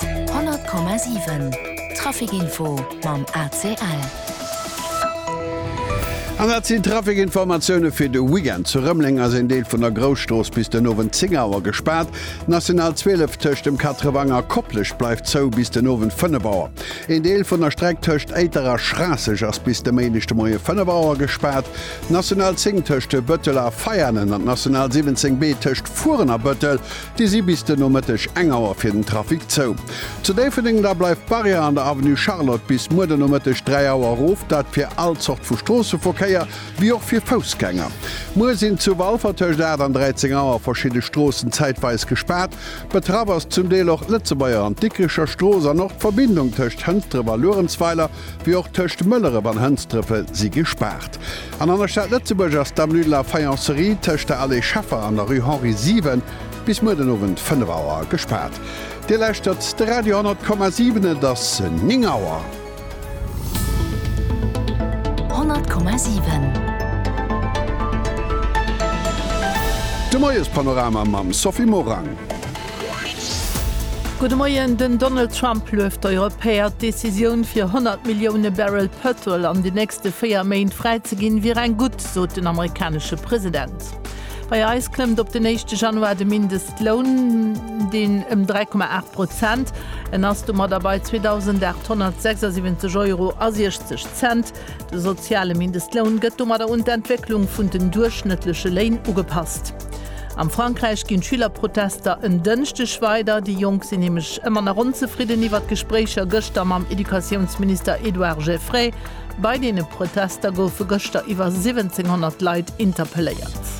100,7 Traficinfo mam ACL. An dat sinn d'Traficinformatioune fir de Weekend. Zu Rëmeleng ass een Deel vun der Grousstrooss bis den Owend 10 Auer gespaart. D'National 12 tëscht dem Katrewang a Koplescht bleift zou bis den Owend 5 Auer. Een Deel vun der Streck tëscht Éiter a Schraasseg ass bis de Méindeg de Moie 5 Auer gespaart. D'National 10 tëscht Bëttel a Veianen an d'National 17B tëscht Furen a Bëttel Déi si bis den Nomëtteg eng Auer fir den Trafic zou. Zu Déifferdeng da bleift d'Barrière an der Avenue Charlotte bis muer den Nomëtteg 3 Auer erof, dat fir all Zort vu Stroosseverkéier, wéi och fir Foussgänger. Muer sinn zu Walfer tëscht 8 an 13 Auer verschidde Stroossen zäitweis gespaart. Betraff ass zum Deel och d'Lëtzebuerger an d'Dikricher Strooss an och d'Verbindung tëscht Hënsdref a Luerenzweiler. wéi och tëscht Mëlleref an Hënsdrëfe si gespaart. An an der Stad Lëtzebuerg ass d'Avenue de la Faïencerie tëscht der Allée Scheffer an der Rue Henri 7 bis muer den Owend 5 Auer gespaart. Dir lauschtert de Radio 10,7, et ass 9 Auer. 10,7. De Moiespanorama mam Sophie Morang. Gudde Moien, Den Donald Trump lueft d'Europäer, d'Decisioun fir 100 Millioune Barrel Pëtrol an den nächste 4 Méint fräi ze ginn, wier eng gutt, sot den amerikanesche President. Bei eis klëmmt op den éischte Januar de Mindestloun den ëm 3,8 Prozent. En ass domadder bei 2.876 Euro a 60 Cent. De soziale Mindestloun gëtt domadder un d'Entwécklung vun den duerchschnëttleche Léin ugepasst. Am Frankräich ginn d'Schülerprotester en Dënschdeg weider. Déi Jonk sinn nämlech ëmmer nach onzefridden iwwer d'Gespréicher gëschter mam Educatiounsminister Edouard Geffray. Bei deene Protester goufe gëschter iwwer 1700 Leit interpelléiert.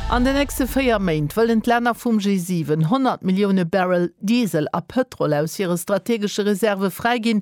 An de nächste véier Méint wëllen d'Länner vum G7 100 Millioune Barrel Diesel a Pëtrol aus hire strategesche Reserve fräiginn,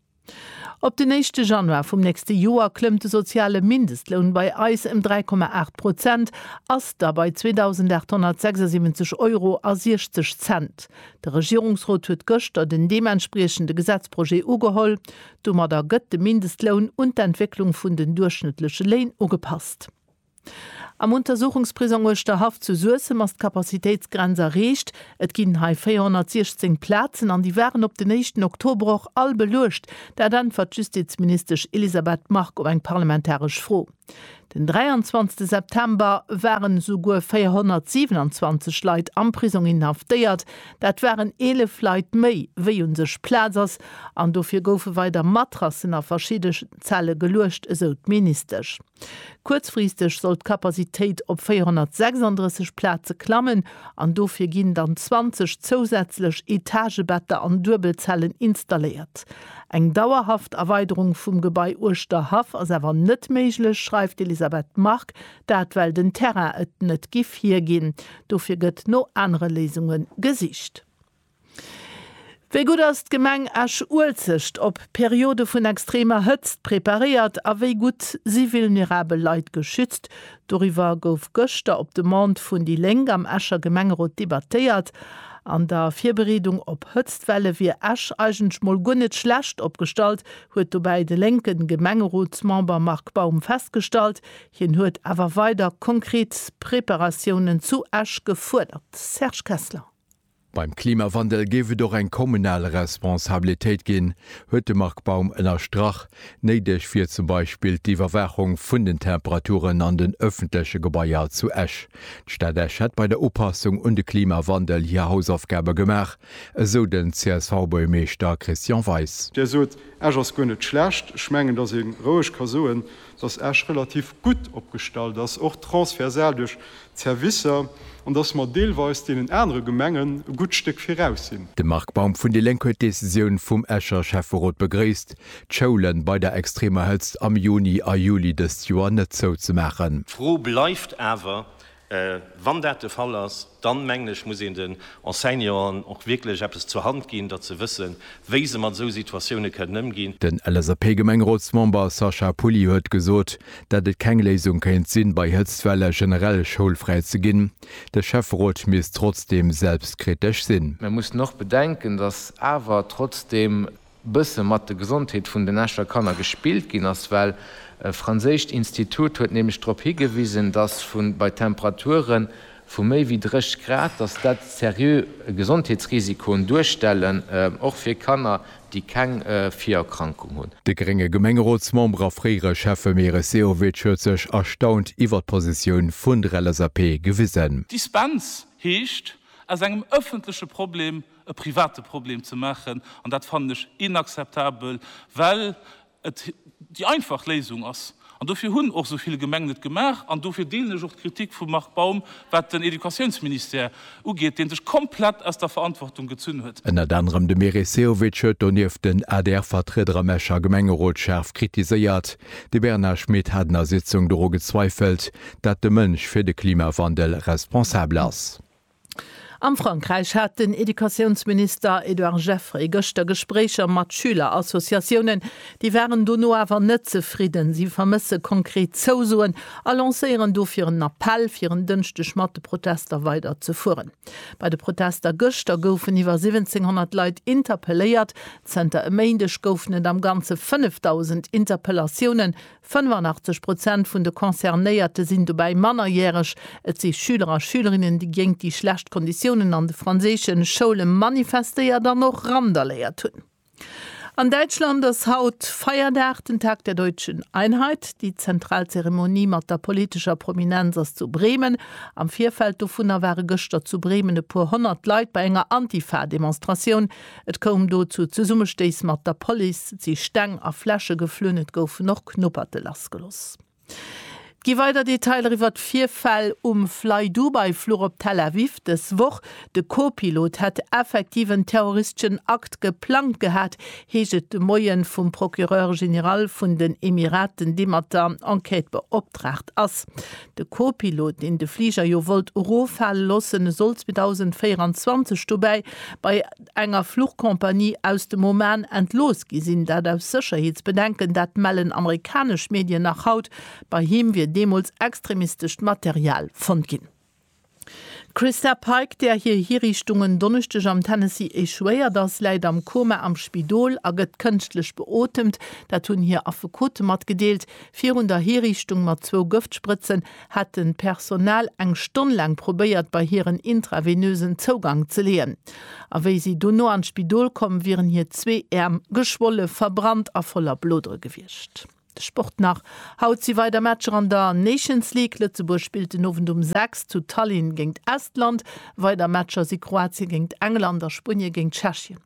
Op den éischte Januar vum nächste Joer klëmmt de soziale Mindestloun bei eis ëm 3,8 Prozent, ass da bei 2.876 Euro a 60 Cent. De Regierungsrot huet gëschter den deementspriechende Gesetzprojet ugeholl. Domadder gëtt de Mindestloun un d'Entwécklung vun den duerchschnëttleche Léin ugepasst. Am Untersuchungsprisong Uerschterhaff zu Suessem ass d'Capacitéitsgrenz erreecht. Et ginn hei 416 Plazen an déi waren op den éischten Oktober och all beluecht. Dat äntwert d'Justizministesch Elisabeth Margue op eng parlamentaresch Fro. Den 23 September waren esouguer 427 Leit am Prisong inhaftéiert. Dat waren 11 Leit méi, wéi u sech Plaz ass an dofir goufe weider Matrassen a verschidde. Zelle geluecht, esou d'Ministesch. Kuerzfristeg soll d'Capacitéit op 436 Plaze klammen an dofir ginn dann 20 zousätzlech Etagebetter an Duebelzellen installéiert. Eng dauerhaft Erweiderung vum Gebai uechter Haff ass awer net méiglech, schreift d'Elisabeth Margue. Dat well den Terrain et net giff hierginn. Dofir gëtt no anere Léisunge gesicht. Wéi gutt ass d'Gemeng Esch-Uelzecht op Periode vun extremer Hëtzt preparéiert a wéi gutt si vulnerabel Leit geschützt? Doriwwer gouf gëschter op Demande vun déi Lénk am Escher Gemengerot debattéiert. An der Virbereedung op Hëtztwelle wier Esch eigentlech mol guer net schlecht opgestallt, huet dobäi de lénke Gemengerotsmember Marc Baum festgestallt. Hien huet awer weider konkret Preparatiounen zu Esch gefuerdert. Serge Kessler. Beim Klimawandel géif et och eng kommunal Responsabilitéit ginn, huet de Marc Baum ënnerstrach. Néideg wier zum Beispill d'Iwwerwaachung vun den Temperaturen an den ëffentleche Gebaier zu Esch. D'Stad Esch hätt bei der Upassung un de Klimawandel hir Hausaufgabe gemaach, esou den CSV-Buergermeeschter Christian Weis. Där sot, Esch ass guer net schlecht. Ech mengen, datt ee roueg ka soen, dass Esch relativ gutt opgestallt ass, och transversal duerch d'Servicer, an dass mer deelweis deenen anere Gemengen e gutt Stéck viraus sinn. De Marc Baum vun déi Lénk huet d'Decisioun vum Escher Schäfferot begréisst, d'Schoule bei der extremer Hëtzt am Juni a Juli dëst Joer net zouzemaachen. D'Fro bleift awer, Wann dat de Fall ass, dann, mengen ech, muss een den Enseignanten och wierklech eppes zur Hand ginn, datt se wëssen, wéi se mat esou Situatioune kënnen ëmginn. Den LSAP-Gemengrotsmember Sacha Pouly huet gesot, datt et keng Léisung kéint sinn, bei Hëtztwelle generell schoulfräi ze ginn. De Schäfferot misst trotzdeem selbstkritesch sinn. Mir mussen och bedenken, datt awer trotzdeem bësse mat de Gesondheet vun den Escher Kanner gespillt ginn ass, well e franséischt Institut huet nämlech drop higewisen, dass vu bei Temperature vu méi wéi 30 Grad, dass dat seriö Gesondheetsrisikoen duerstellen, och fir Kanner, déi keng Virerkrankung hunn. De grénge Gemengerotsmember a fréiere Schäffe Meris Sehovic huet sech erstaunt iwwert d'Positioun vun der LSAP gewisen. Dispens heescht, aus engem ëffentleche Problem e private Problem ze maachen, an dat fannen ech inakzeptabel, well et déi einfach Léisung ass. An dofir hunn och esou vill Gemengen et gemaach an dofir deelen ech och d'Kritik vum Marc Baum, wat den Educatiounsministère ugeet, dee sech komplett aus der Verantwortung gezunn huet. Ënnert anerem de Meris Sehovic huet donieft den ADR-Vertrieder am Escher Gemengerot schaarf kritiséiert. De Bernard Schmit hat an der Sitzung doru gezweifelt, dat de Mënsch fir de Klimawandel responsabel ass. Am Frankräich hat den Educatiounsminister Edouard Geffray gëschter Gespréicher mat Schülerassociatiounen. Déi waren dono awer net zefridden. Si vermësse konkret Zousoen a lancéieren dofir en Appell, fir en Dënschdeg mat de Protester weider ze fueren. Bei de Protester gëschter goufen iwwer 1700 Leit interpelléiert. Zënter e Méindeg goufen et am Ganze 5.000 Interpellatiounen, 85 Prozent vun de Concernéierte sinn dobäi mannerjäreg. Et si Schüler a Schülerinnen, déi géint déi schlecht Konditiounen an de franséische Schoule manifestéiert an och randaléiert hunn. An Däitschland ass haut Feierdag, den Tag der deutschen Einheit. Déi zentral Zeremonie mat der politescher Prominenz ass zu Bremen. Am Virfeld dovunner ware gëschter zu Bremen e puer honnert Leit bei enger Antifa-Demonstratioun. Et koum do zu Zesummestéiss mat der Police, et si Steng a Fläsche geflunn, et goufen och Knupperte lassgeloss. Et gi weider Detailer iwwert d'Virfäll um Flydubai-Fluch op Tel Aviv dës Woch. De Co-Pilot hätt effektiv en terroristeschen Akt geplangt gehat, heescht et de Moie vum Procureur général vun den Emiraten, dee mat der Enquête beoptraagt ass. De Co-Pilot, deen de Fliger jo wollt eroffale lossen, soll 2024 dobäi bei enger Fluchcompagnie aus dem Oman entlooss gi sinn, dat aus Sécherheetsbedenken. Dat mellen amerikanesch Medien nach haut. Bei him wier deemools extremistescht Material fonnt ginn. D'Christa Pike, där hir Hiriichtung en Donneschdeg am Tennessee echouéiert ass, läit am Koma am Spidol a gëtt kënschtlech beotemt. Dat hunn hir Affekote matgedeelt. Virun der Hiriichtung mat zwou Gëftsprëtzen hat de Personal eng Stonn laang probéiert, bei hir en intravenösen Zougank ze leeën. A wéi si dono an d'Spidol komm wieren, hir zwee Äerm geschwolle, verbrannt a voller Blodere gewiescht. Sport nach, Haut si weider Matcher an der Nations League. Lëtzebuerg spillt den Owend um 6 zu Tallinn géingt Estland. Weider Matcher si Kroatien géingt England a Spuenie géingt Tschechien.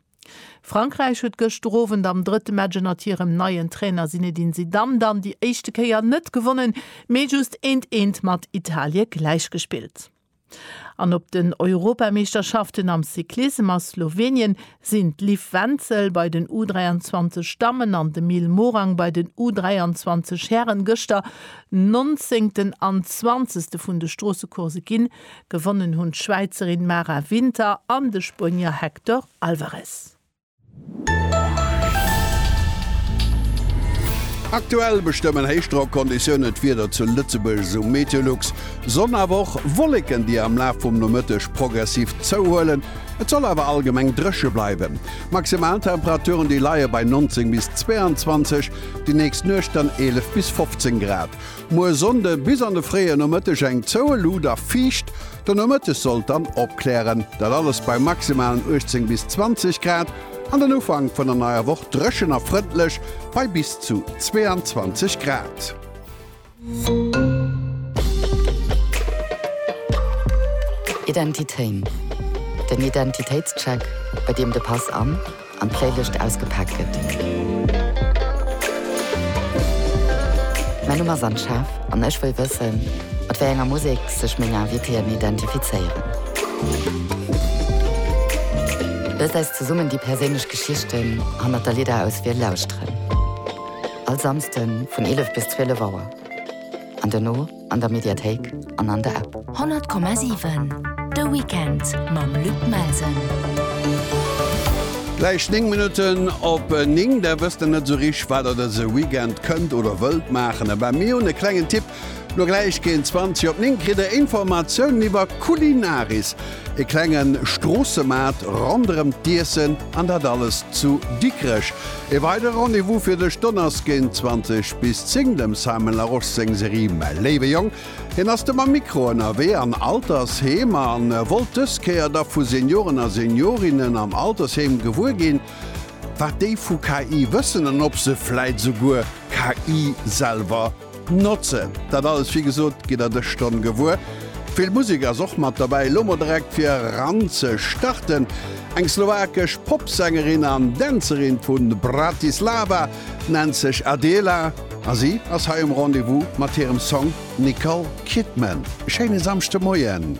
Frankräich huet gëschter Owend am drëtte Match ënnert hirem neien Trainer Zinedine Zidane dann déi éischte Kéier net gewonnen, mee just eent eent mat Italie gläichgespillt. An op den Europameeschterschaften am Cyclissem a Slowenien sinn d'Liv Wenzel bei den U 23 Dammen an de Mil Morang bei den U 23 Hären gëschter Nonzéngten an Zwanzegste vun de Stroossecoursse ginn. Gewonnen hunn d'Schwäizerin Mara Winter an de Spuenier Hector Alvarez. Aktuell bestëmmen Héichdrockkonditiounen d'Wieder zu Lëtzebuerg, esou Meteolux. Sonn awer och Wolleken, déi am Laf vum Nomëtteg progressiv zouhuelen. Et soll awer allgemeng dréche bleiwen. D'Maximaltemperaturen, déi leie bei 19 bis 22, déi nächst Nuecht dann 11 bis 15 Grad. Muer Sonnde bis an de fréie Nomëtteg eng zoueluut a fiicht. Den Nomëttes sollt dann opklären, dat alles bei maximalen 18 bis 20 Grad, an den Ufank vun der neier Woch dréchen a frëndlech bei bis zu 22 Grad. Identitéin, den Identitéitscheck, bei deem de Pass an. an d'Fréilicht ausgepaakt gëtt. Mäin Numm ass Anne Schaaf an ech wëll wëssen, mat wéi enger Musek sech meng Invitéen identifizéieren. Loosst eis zesummen déi perséinlech Geschichten hannert der Lidderauswiel lauschteren. All Samsden vun 11 bis 12 Auer. An dono? an der Mediathéik an an der App. 100,7 De Weekend mam Luc Melsen. Gläich 9 Minutten op 9. Der wësst der net esou richteg, wat der dëse Weekend kënnt oder wëllt maachen? Abee, mir hunn e klengen Tipp. Lo gläich géint 20 op 9 kritt der Informatiounen iwwer Culinaris, e klenge Stroossemaart ronderëm d'Iessen, an dat alles zu Dikrech. E weidere Rendez-vous fir dech, Donners géint 20 bis 10 dem Simon Larosche seng Serie Mäi léiwe Jong. Hien ass de mam Mikro ënnerwee an Altersheem a wollt dës Kéier da vu Senioren a Seniorinnen am Altersheem gewuer ginn, wat déi vu KI wëssen an ob se vläit souguer KI selwer Notzen. Dat alles wéi gesot gitt der dës Stonn gewuer. Vill Musek ass och mat derbäi. Elo mol direkt fir eran ze starten eng slowakesch Popsängerin an Dänzerin vu Bratislava nennt sech Adela a si ass hei um Rendez-vous mat hirem Song Nicole Kidman. E schéine Samschdemoien.